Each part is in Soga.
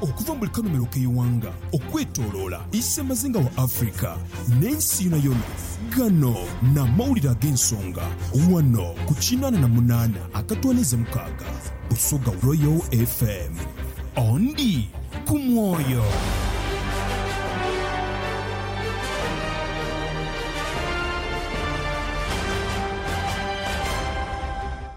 Okuva mu buli kanhumilo k'eighanga okwetoloola isemazinga wa Africa n'ensi yonayona, gano n'amawulire ag'ensonga ghano ku kinaana na munaana akatwaniiza mukaaga Busoga Royal FM. Ondi ku mwoyo.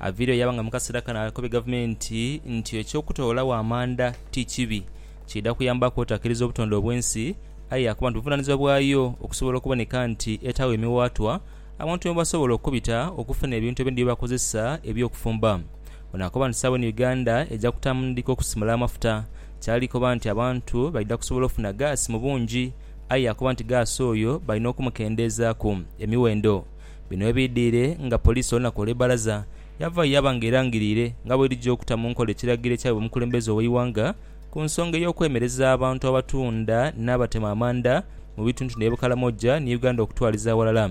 Aviiriyo yaaba nga mu kaseera kano akobye gavumenti nti eky'okutoolagho amanda ti kibi, kiidha kuyambaku otakiriza obutonde obw'ensi aye yaakoba nti buvunaanizibwa bwayo okusobola okuboneka nti etaagho emiwaatwa abantu mwebasobola okubita okufuna ebintu ebindi byebakozesa eby'okufumba. Ono akoba nti sawa eno Uganda eja kutandika okusimula amafuta kyali koba nti abantu baidha kusobola ofuna gaasi mu bungi aye yaakoba nti gaasi oyo balina okumukendeezaaku emiwendo Bino webidhire nga police olunaku olwebaraza yavayo yaba nga erangirire nga bwerija okuta munkola ekiragiro ekyabibwa omukulembeze oweighanga kunsonga eyokwemereza abantu abatunda nabatema amanda mubitundutundu ebye Bukalamoja ni Uganda okutwaliza aghalala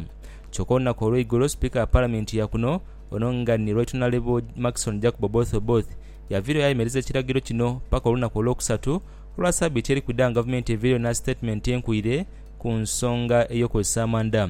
kyoka olunaku olweigulo speaker wa parliament yakuno ono nga ni Right Honourable Maxon Jacob Oboth Oboth yavirayo yayemereza ekiragiro kino paka olunaku olwokusatu olwa sabiiti erikwidha nga gavumenti evaireyo nastatement enkuire kunsonga eyokukozesa amanda.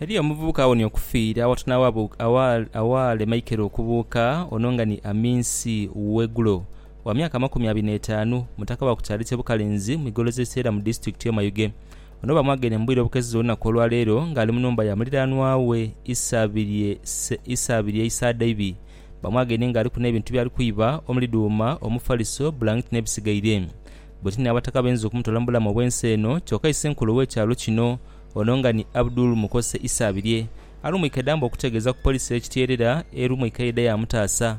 Eriyo omuvubuka awonye okufiira awatunagho awaale Michael okubuuka ono nga ni Aminsi Wegulo wa myaka amakumi abiri n'etaanu mutaka wa ku kyalo kye Bukalenzi mu igoloza e Seera mu disitulikiti y'e Mayuge. Ono bamwageire mu bwire obukeziza olunaku olwa leero nga ali mu nhumba ya muliranwa we Isabirye Isadaibi. Bamwageire nga aliku n'ebintu byali kwiba omuli dhuuma, omufaliso, bulangiti n'ebisigaire. Bwetini abataka bainza okumutoola mu bulamu obw'ensi eno kyoka isenkulu ow'ekyalo kino ono nga ni Abdul Mukose Isabirye alumwike damba okutegeeza ku poliisi ey'e Kityerera erumwike yaidha yaamutaasa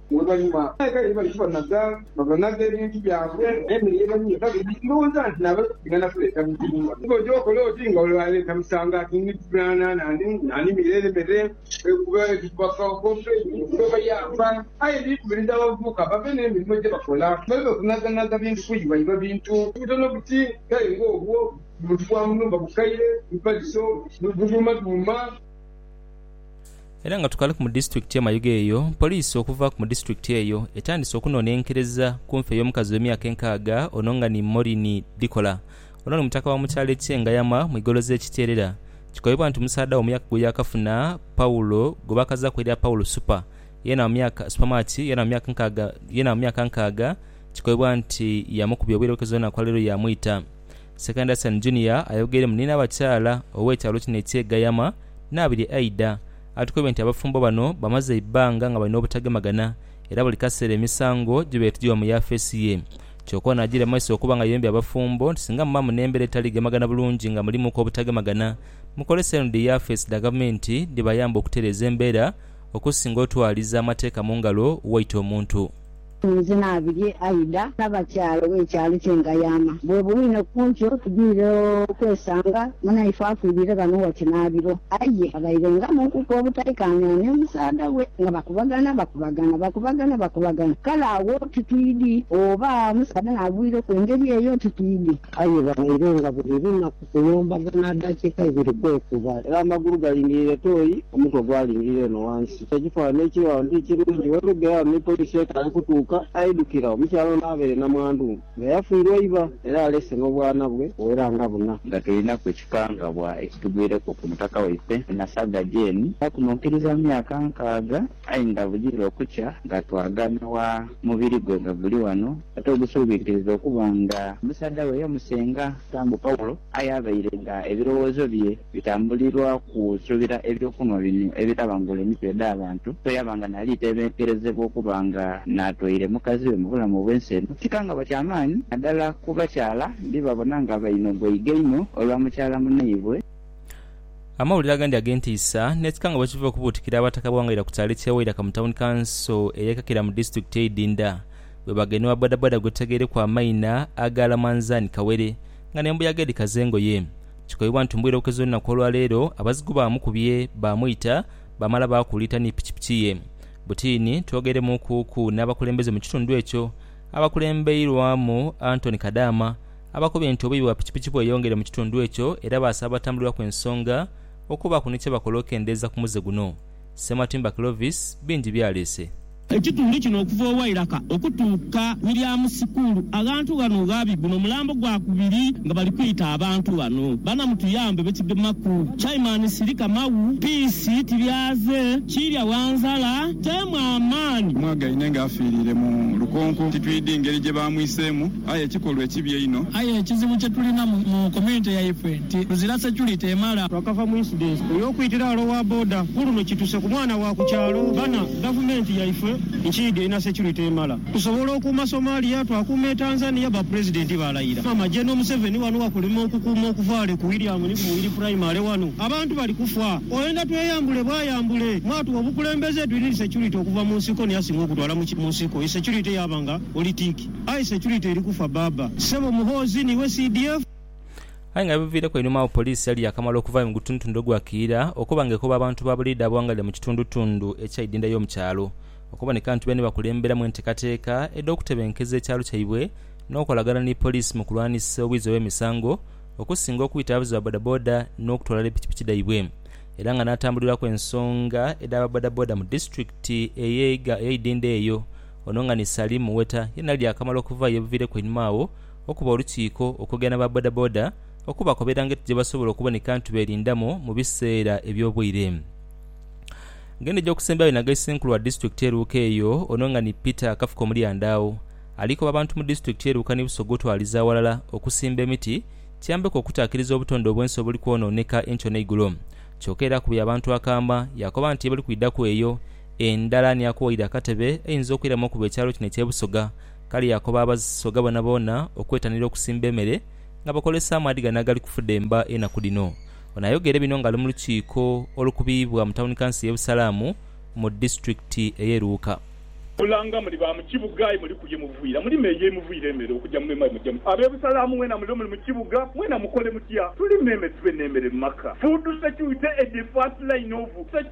Oluvainhuma abaikaire bwe bali kubanaga, babanaga ebintu byabwe n'emere ye baliire. Kabiri, ndhowooza nti naabo bali kwiding'ana kuleeta buzibu. Aye oja okola oti nga ole aleeta musango ati ndi kufunaana n'animira ere mere kuba eri kubafaawo bobe oba bayamba. Aye ndikubiriza abavubuka babe n'emirimo gye bakola baleme kunaganaga bintu kuyiba iba bintu butono buti kale ng'obwo, buntu bwa mu nhumba bukaire, bipaliso, bidhuumadhuuma. Era nga tukaliku mu disitulikiti ye Mayuge eyo, poliisi okuva ku mu disitulikiti eyo etandise okunonenkereza ku nfa ey'omukazi ow'emyaka enkaaga ono nga ni Moureen Dhikola. Ono ni mutaka wa mu kyalo ekye Ngayama mu igolo ze Kiteerera. Kikoibwa nti musaadha we mu myaka gwe yakafuna Paul gwe bakazaku erya Paul Super yena mu myaka Super Match yena mu myaka nkaaga yena mu myaka nkaaga kikoibwa nti yamukubya obwire obukezo n'enaku ya leero yamwita. Ssekanda Stan Junior ayogeire mu nina abakyala ow'ekyalo kino eky'e Gayama, Nabirye Aidah atukoibye nti abafumbo bano bamaze eibbanga nga balina obutagemagana era buli kaseera emisango gibeire tigiba mu yafeesi ye kyoka ono agiire mu maiso okuba nga ayoombye abafumbo nti singa muba mu n'embeera etali gemagana bulungi nga mulimuku obutagemagana mukolese eno dhi yafeesi dha gavumenti dhibayambe okutereeza embeera okusinga otwaliza amateeka mu ngalo waita omuntu Nze naabirye Aida n'abakyala b'ekyalo kye ngayama. Bwebuli ni ku nkyo tudwire okwesanga munaife afiirire ghano ghati naabiro. Aye abaire nga mu nkuku obutaikaanira ni musaadha we nga bakubagana bakubagana, bakubagana bakubagana. Kale agho titwidhi oba omusaadha naagwireku engeri eyo titwidhi. Aye babaire nga buli lunaku Kuno mbagana adaakiika ibiri kwekuba, era amagulu galingirire toyi, omutwe gwalingirire eno ghansi. Kyo ekifanhanhi ekiri ghano ti kirungi. Bwe lugera ghano ni poliisi etaale kutuuka, aidhukira omukyala ono abaire namwandu nga yafiirwa iba era aleese n'obwana bwe obuwera nga buna. Nga tulinaku ekikangabwa ekitugwireku ku mutaka waife Nasagga Jane, era kuno nkiriza myaka nkaaga. Aye nga bwidhira okukya nga twagana wa mubiri gwe nga guli wano, ate ogusuubikiriza okuba nga omusaadha we yamusenga? Era mbu Paulo aye abaire nga ebirowoozo bye bitambulirwa kusuubira ebyokunhwa bino ebitabangula emitwe edh'abantu, so yaba nga naali teebenkerezebwa okuba nga n'atwaire mukazi we mu bulamu obw'ensi eno. Kikangabwa kya maani nadala ku bakyala, ndibabona nga bainogwa iga inho olwa mukyala munaibwe. Amawulire agandi ag'entiisa n'ekikanga bwe kiva okubuutikira Abataka b'Wangaira ku kyalo eky'e Wairaka mu Tawuni Kanso ey'e Kakira mu disitulikiti ey'e Idinda bwe bagenha owa bodaboda gwe tutegeereku amaina aga Lamanzani Kawere nga n'embuyaga edhikaza engoye. Kikoibwa nti mu bwire obukeze olunaku olwa leero abazigu baamukubye baamwita baamala baakuuliita ni pikipiki ye. Butiini twogeremuukuuku n'abakulembeze mu kitundu ekyo abakulembeirwamu Anthony Kadaama Abakubi ente obuibi bwa pikipiki bweyongere mu kitundu ekyo era baasaba abatambulirwaku ensonga okubaaku ni kyebakola okendeeza ku muze guno. Ssematimba Clovis bingi byaleese. Ekitundu kino okuva owairaka okutuuka William school aghantu ghano ghabi guno mulambo gwa kubiri nga bali kwita abantu ghano bana mutuyambe bekigemaku chairman sirika maghu piisi tibyaze kiirya wanzala teemu amaani. Mwagaine nga afiiriire mu lukonko titwidhi ngeri gye baamwiseemu. Aye ekikolwa ekibi einho. Aye ekizibu kye tulina mu community yaifwe nti tuzira security emala. Twakava mu incident eyokwitira ghale owa boda kuluno kituse ku mwana wa ku kyalo ghana. Gavumenti yaifwe nkiidhi erina security emala. Tusobola okuuma Somalia, twakuuma e Tanzania, ba president balayira. Maama General Museveni wano wakulema okukuuma okuvaale ku William ni ku Muwiri primary wano abantu bali kufa. Oyenda tweyambule bwayambule. Mwatuwa obukulembeze twirinde security okuva mu nsiko niyasinga okutwala mu nsiko. Security yaba nga politiki. Aye security eri kufa baaba. Sebo Muhoozi niiwe CDF? Aye nga ebiviireku einhuma agho poliisi yali yaakamala okuvaayo mu gutundutundu ogwa Kiira okuba nga ekoba abantu ba buliidha abawangaalira mu kitundutundu ekya Idinda y'omu kyalo okuboneka nti beene bakulemberamu enteekateeka edh'okutebenkeza ekyalo kyaibwe n'okukolagana ni poliisi mu kulwanisa obwizi obw'emisango okusinga okwita abavuzi ba bodaboda n'okutwala ni pikipiki dhaibwe era nga n'atambuliraku ensonga edh'aba bodaboda mu disitulikiti ey'e Idinda eyo Ono nga ni Salim Muweta yena ali yakamala okuvaayo ebuviireku einhuma agho okuba olukiiko okwogera n'aba bodaboda okubakobera ngeti gyebasobola okuboneka nti beerindamu mu biseera eby'obwire Ng'eno egy'okusembyayo yena ga Issenkulu wa disitulikiti e Luuka eyo ono nga ni Peter Kafuka Omulyandaawo ali koba abantu mu disitulikiti ye Luuka ni Busoga otwaliza aghalala okusimba emiti kiyambeku okutaakiriza obutonde obwensi obuli kwonooneka enkyo n'eigulo kyoka era akubye abantu akaama yakoba nti yebali kwidhaku eyo Endala ni ya kuwaire akatebe einza okwiramu okuba ekyalo kino eky'e Busoga. Kale yaakoba Abasoga boonaboona okwetanira okusimba emere nga bakozesa amaadhi gano agali kufudemba enaku dhino. Ono ayogeire bino ng'ali mu lukiiko olukubiibwa mu Tawuni Kanso y'e Busalaamu mu disitulikiti ey'e Luuka. Mulanga muli ba mu kibuga aye muli kulya muvwira muli meeya emuvwira emere okugya mu meema mugya mu. Ab'e Busalaamu mwena mule muli mu kibuga mwena mukole mutya tuli meeme tube n'emere mu maka. Food security e the first line of.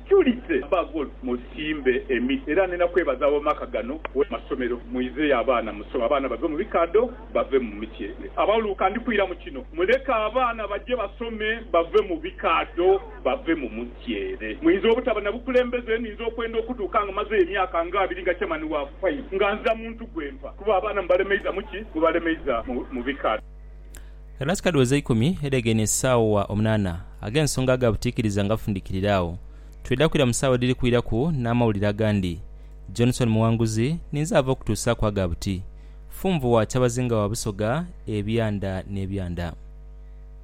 Julise bagul musimbe emiti era nina kwebaza abamaka gano we masomero muizeyo abaana musome abaana bave mu bikadho bave mu mityere abauluka ndi kwira mu kino muleke abaana baje basome bave mu bikadho bave mu mutyere muinza obutaba na bukulembeze ninza okwenda okutuuka nga mazeyo emyaka nga abiri nga chairman wa fai nga nzira muntu gwe mpa kuba abaana mubalemeiza mu ki mubalemeiza mu bikadho. Enatika dhiweza ikumi edhegeine esaawa omunaana ag'ensonga ga butiikiriza nga bufundikirire agho. Twidha kwira mu saawa edhiri kwiraku n'amawulire agandi. Johnson Muwanguzi, Ninze ava okutuusaaku aga buti. Funvu wa Kyabazinga wa Busoga, Ebyanda n'ebyanda.